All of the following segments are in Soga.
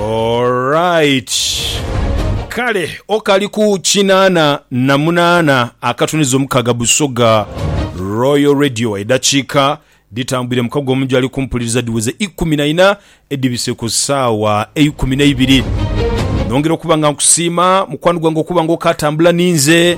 Alright. Kale okali ku kinaana na munaana akatuniza omukaga Busoga Royal Radio edakiika dhitambwire mukago omu gyali kumpuliriza dhiweze ikumi na ina edhibise ku saawa eikumi neibiri. Nongera okuba nga nkusiima mukwano gwange okuba nga okatambula ninze.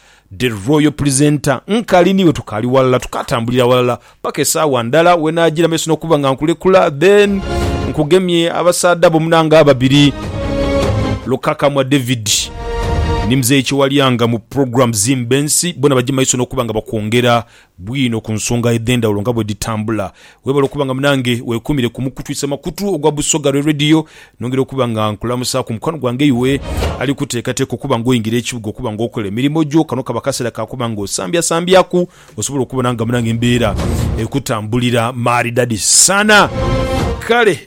The Royal Presenter, Nkali niiwe tukaali walala, tukaatambulira walala paka esaawa ndala wenaajiira maiso n'okuba nga nkulekula then nkugemye abasaadha bo munange ababiri, Lukakamwa David ni Mzei Kyewalyanga mu program Zimba Ensi bona baje maiso n'okuba nga bakwongera bwino ku nsonga edh'endhawulo nga bwe dhitambula. Weebale okuba nga munange, weekuumire ku mukutu isemakutu ogwa Busoga Lwe Radio. Nongera okuba nga nkulamusaaku mukwano gwange iwe ali kuteekateeka okuba ng'oyingira ekibuga okuba ng'okola emirimo gyo. Kano kaba kaseera ka kuba ng'osambyasambyaku osobole okubona nga munange embeera ekutambulira maridadi sana. Kale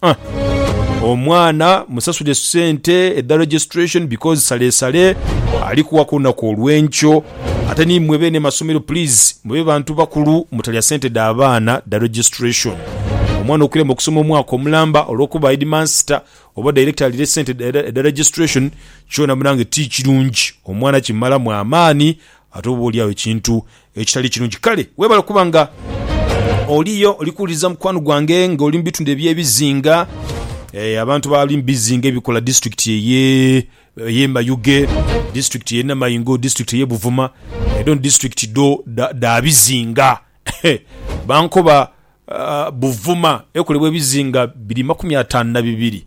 Huh. Omwana musasule sente edha registration because salesale ali kuwa ku lunaku olwenkyo. Ate ni mwe beene masomero please mube bantu bakulu mutalya sente dha baana dha registration. Omwana okulema okusoma omwaka omulamba olwokuba headmaster oba director alire sente edha registration kyona munange ti kirungi omwana kimalamu amaani Ate oba oli agho ekintu ekitali kirungi. Kale webale okuba nga oliyo oli kuwuliriza mukwano gwange nga oli mu bitundu eby'ebizinga. Eh, abantu bali mu bizinga ebikola disitulikiti eye eye Mayuge, disitulikiti eye Namaingo, disitulikiti eye Buvuma, edho ni disitulikiti dho dha dha bizinga. Bankoba Buvuma ekolebwa ebizinga biri makumi ataanu na bibiri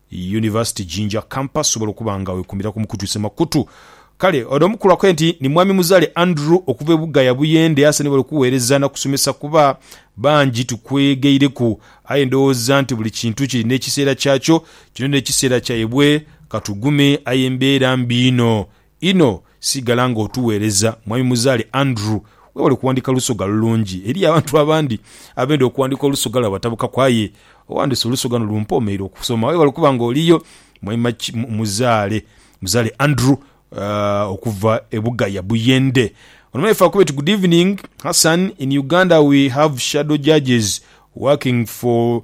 Yunivasite Jinja Campus sobola okuba nga wekumira ku mukutu ise makutu. Kale ono omukulu akoye nti ni Mwami Muzaale Andrew okuva e Bugaya Buyende ase ni bali okuweereza na kusomesa kuba bangi tukwegeireku aye ndowooza nti buli kintu kirina ekiseera kyakyo kino n'ekiseera kyaibwe katugume aye mbeera mbi inho Inho sigala nga otuweereza Mwami Muzaale Andrew. Weebale kuwandiika lusoga lulungi. Eriyo abantu abandi abenda okuwandiika olusoga lwaibwe batabukaku aye owandiise olusoga luno lumpoomeire okusoma. Weebale kuba nga oliyo Mwami Muzaale Muzaale Andrew okuva e Bugaya Buyende. Ono mwaife akube ti Good evening Hassan, in Uganda we have shadow judges working for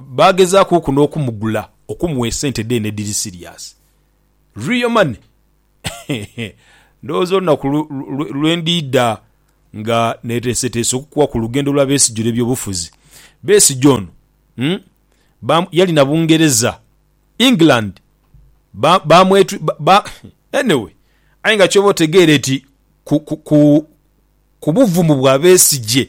Baagezaakuku n'okumugula okumuwa esente dheene edhiri siriasi. Real money. Ndowooza olunaku lwe ndiidha nga neeteeseteese okukuwa ku lugendo lwa Besigye olw'ebyobufuzi. Besigye ono yali na Bungereza, England, anyway aye nga ky'oba otegeere ti ku buvumu bwa Besigye.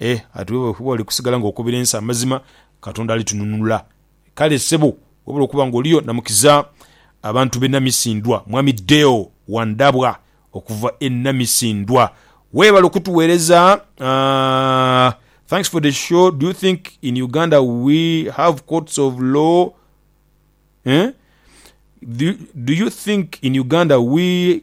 E, ati bwe bali bali kusigala nga okobera ensi amazima, Katonda ali tununula. Kale ssebo, wabula okuba nga oliyo namukiza abantu be Namisindwa, Mwami Deo Wandabwa okuva e Namisindwa. Webale okutuwereza. Aah thanks for the show, do you think in Uganda we have courts of law eeh do you think in Uganda we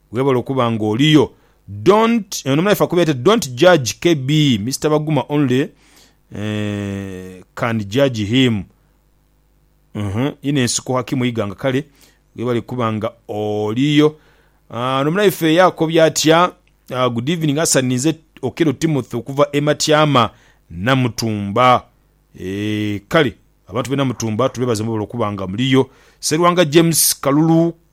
Webale okuba nga oliyo. Don't eno muna ife akubera ati don't judge KB Mister Baguma only can judge him uhmm inho ensiko hakimu iganga kale webale kuba nga oliyo. Ono munaife ye akobye atya? Good evening Hassan ninze Okello Timothy okuva e Matyama Namutumba eeh kale abantu be Namutumba tubebaza mwebale okuba nga muliyo. Serwanga James kalulu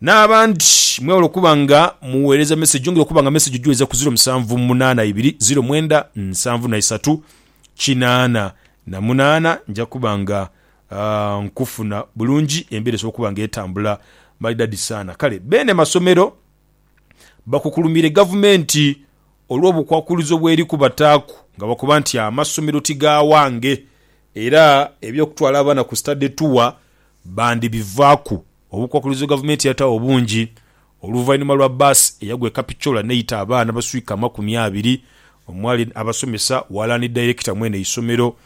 N'abandi mwewale okuba nga mugheereza meseji. Yongera okuba nga meseji ojiweza ku ziro musanvu munaana ibiri ziro mwenda nsanvu na isatu kinaana na munaana. Nja kuba nga nkufuna bulungi, embeera esobole okuba nga etambula maridadi sana. Kale beene masomero bakukulumiire gavumenti olw'obukwakulizo bw'eri kubataaku nga bakoba nti amasomero ti ga wange era eby'okutwala abaana ku study tour bandibivaaku. Obukwakkulizo Gavumenti yataagho bungi oluvainhuma lwa bbaasi eyagwa e Kapchorwa n'eita abaana abaswika amakumi abiri omwali abasomesa, ghalala ni dayirekita mw'eno eisomero.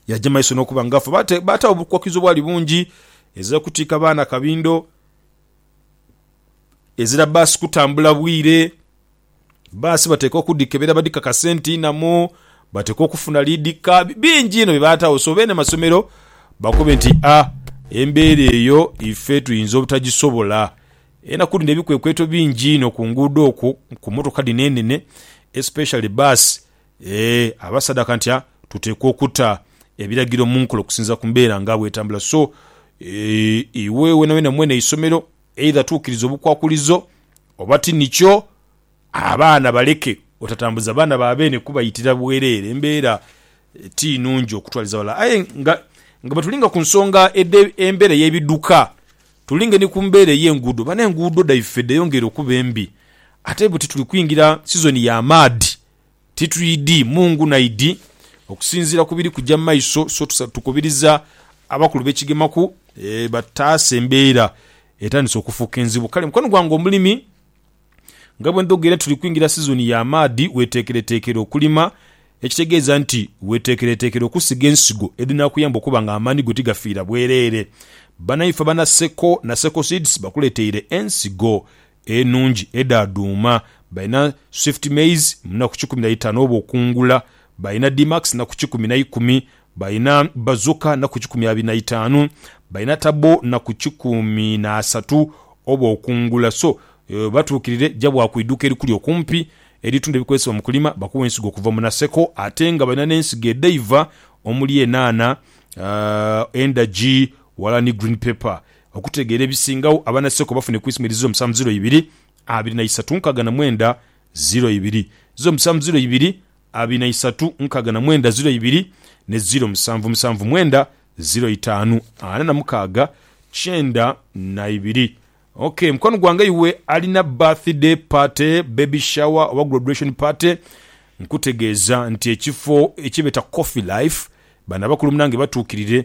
Yaja maiso n'okuba nga afa baataagho obukwakkulizo obwali bungi ezira kutiika baana kabindo, ezira bbaasi kutambula bwire Bbaasi bateekwa okudhikebera badhikakase nti nnamu, bateekwa okufuna liidhika, bingi inho bye bataagho. So beene masomero bakobe nti a embeera eyo ife tuyinza obutagisobola. Enaku dhino ebikwekweto bingi inho ku nguudo okwo ku mmotoka dhino enene especially bbaasi ee abasadaka nti a tuteekwa okuta ebiragiro mu nkola okusinziira ku mbeera nga bw'etambula. So ee iwe weenaweena mwene isomero. Eidha tuukiriza obukwakulizo oba ti nikyo, abaana baleke otatambuza baana ba beene kubayitira bwereere. Embeera ti nungi okutwaliza ghalala. Aye nga bwe tulinga ku nsonga edh'embeera ey'ebidhuka, tulinge ni ku mbeera ey'enguudo. Bano enguudo dhaife dheyongeire okuba embi ate buti tuli kwingira sizoni y'amaadhi. Titwidhi mu ngunaidhi okusinziira ku biri kuja mu maiso so tukubiriza abakulu be Kigemaku bataase embeera etandise okufuuka enzibu. Kale mukwano gwange omulimi nga bwe ndhoga era tuli kwingira sizoni ya maadhi weteekereteekere okulima ekitegeeza nti weteekereteekere okusiga ensigo edhinaakuyamba okuba nga amaani go tigafiira bwereere. Banaife aba Naseko, Naseko Seeds bakuleteire ensigo enungi edha dhuuma, balina Swift Maize mu naku kikumi na itaanu oba okungula, balina D-Max naku kikumi na ikumi, balina Bazooka naku kikumi abiri na itaanu, balina Turbo naku kikumi na asatu oba okungula. So batuukirire ja bwa ku iduuka erikuli okumpi eritunda ebikozesebwa mu kulima bakuwe ensigo okuva mu Naseko ate nga balina n'ensigo edhaiva omuli enhaanha, endagi, wala ni green pepper. okutegeera ebisingagho abanaseko bafune ku isma eriziru omusanvu ziiro ibiri abiri na isatu nkaga na mwenda ziiro ibiri ziiro musanvu ziiro ibiri abiri na isatu nkaga na mwenda ziiro ibiri ne ziiro musanvu musanvu mwenda ziiro itaanu ana na mukaaga kyenda na ibiri. Ok mukwano gwange iwe alina birthday party, baby shower oba graduation party nkutegeeza nti ekifo ekyebeeta Coffee Life bano abakulu munange batuukirire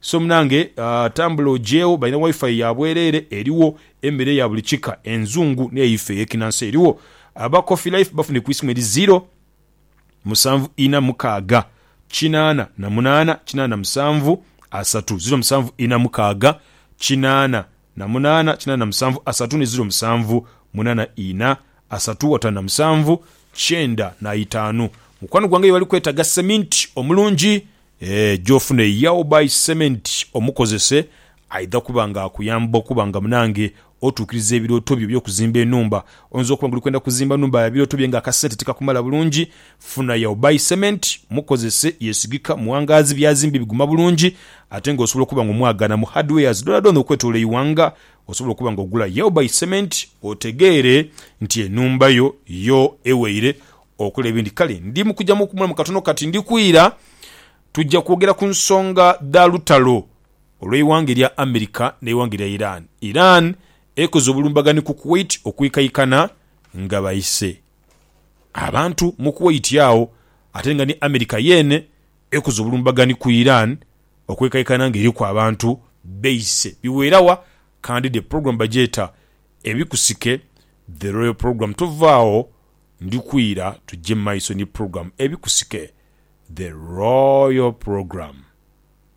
So munange tambula ogyegho, balina wifi ya bwereere eriwo, emmere ya buli kika enzungu n'eyaife ey'ekinansi eriwo. Aba Coffee Life bafunhe ku isimu eri ziro, musanvu inha mukaaga, kinaana na munaana, kinaana na musanvu, asatu, ziro musanvu inha mukaaga, kinaana. na munaana kinaana na musanvu asatu ni ziro musanvu munaana ina asatu watano na musanvu kyenda na itaanu mukwano gwange yebali kwetaga cement omulungi eeh jofune yao buy cement omukozese aidha kuba nga akuyamba okuba nga munange otuukiriza ebirooto byo ebyokuzimba enhumba oyinza okuba nga oli kwenda kuzimba nhumba ya birooto bye nga akasente tikakumala bulungi Funa ya obuy cement mukozese yesigika muwangaazi byazimbe biguma bulungi ate nga osobola okuba nga omwagaana mu hardwares dhoonadhoona okwetolola eighanga osobola okuba nga ogula ya obuy cement otegeere nti enhumba yo yo eweire okola ebindi kale ndi mukuja mukumulamu katono kati ndi kwira tuja kwogera ku nsonga dha lutalo olweighanga erya America neighanga erya Iran Iran ekoze obulumbaganhi ku Kuwait okwikaikana nga baise abantu mu Kuwait agho ate nga ni America yeene ekoze obulumbaganhi ku Iran okwekaikana nga eriku abantu beise biweera wa kandi the program bagyeta Ebikusike The Royal Program Tova agho ndi kwira tugye mu maiso ni program Ebikusike The Royal Program.